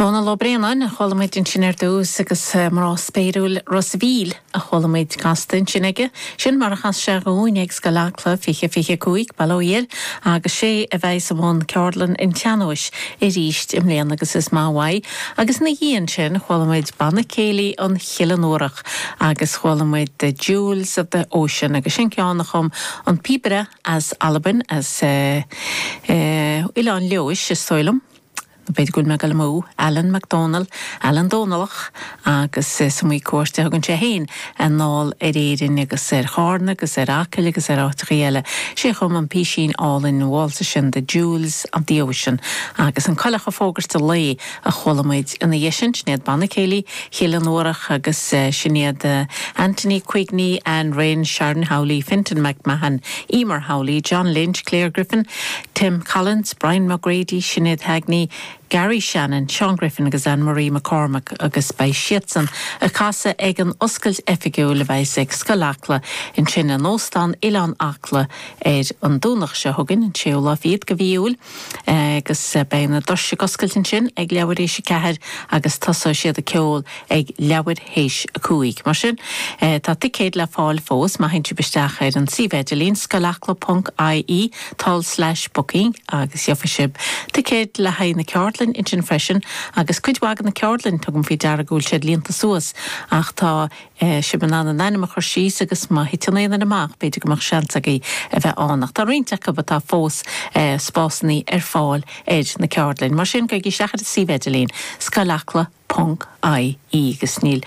Dónal Ó Braonáin a chuala muid ansin ar dtús agus mná spéiriúil Ros a' Mhíl a chuala muid casta ansin aige. Sin mar a chas sé dhúinn ag Scoil Acla 2025, bail ó Dhia air, agus 'sé a bheas i mbun Ceardlann an tSean-nóis arís i mbliana agus is maith uaidh. Agus ina dhiaidh ansin chuala muid Banna Céilí an Chill Fhionnúrach agus chuala muid The Jewels of the Ocean agus sin ceann a chum an píobaire as Albain, as eh, Oileán Leodhais is dóigh liom, nó b'fhéidir go bhfuil mé ag dul amú, Allan MacDonald, Alan Dónallach agus is iomaí cuairt a thugann sé fhéin anall ar Éirinn agus ar Chárna agus ar Acaill agus ar áiteachaí eile. Sé a chum an písín álainn, waltz sin The Jewels of the Ocean agus an coileach ag fógairt an lae a chuala muid ina dhiaidh sin. Sin iad Banna Céilí Chill Fhionnúrach agus sin iad Anthony Quigney, Anne Rynne, Sharon Howley, Fintan McMahon, Eimear Howley, John Lynch, Claire Griffin, Tim Collins, Brian McGrady, Sinéad Heagney, Garry Shannon, Seán Griffin agus Anne Marie McCormack agus beidh siadsan ag casadh ag an oscailt oifigiúil a bheas ag Scoil Acla ansin in Óstán Oileán Acla ar an Domhnach seo chugainn, an 6ú lá fichead de mhí Iúil. agus beidh na doirse ag oscailt ansin ag leathuair théis a ceathair agus tosóidh siad ag ceol ag leathuair théis a cúig. Mar sin, tá ticéid le fáil fós má théann sibh isteach ar an suíomh idirlín, Scoil Acla ponc IE, tulslais booking agus gheofaidh sibh ticéid le haghaidh na ceardlainne ansin freisin, agus cuid mhaith de na ceardlainn, tugaim faoi deara go bhfuil siad líonta suas, ach tá. Tá sibh in ann a n-ainm a chur síos agus má thiteann aon duine amach b'fhéidir go mbeadh seans agaibh a bheith ann. Ach tá roinnt acu atá fós spásannaí ar fáil ar na ceardlainn. Mar sin gabhaigí isteach ar an suíomh idirlín, Scoil Acla ponc IE agus níl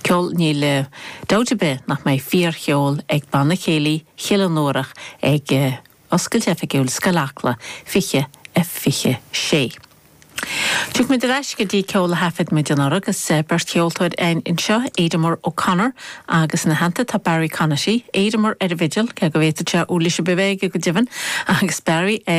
ceol, níl dabht ar bith nach mbeidh fíor-cheol ag Banna Céilí Chill Fhionnúrach ag. Oscailt Oifigiúil Scoil Acla 2026. Tiocfaidh muid ar ais go dtí ceol a thaifead muid anuraidh agus beirt cheoltóir againn anseo, Ademar O'Connor agus ina theannta tá Barry Conaty. Ademar ar an bhfidil, cé go bhféadfadh sé uirlis ar bith a bheith aige go deimhin, agus Barry ar.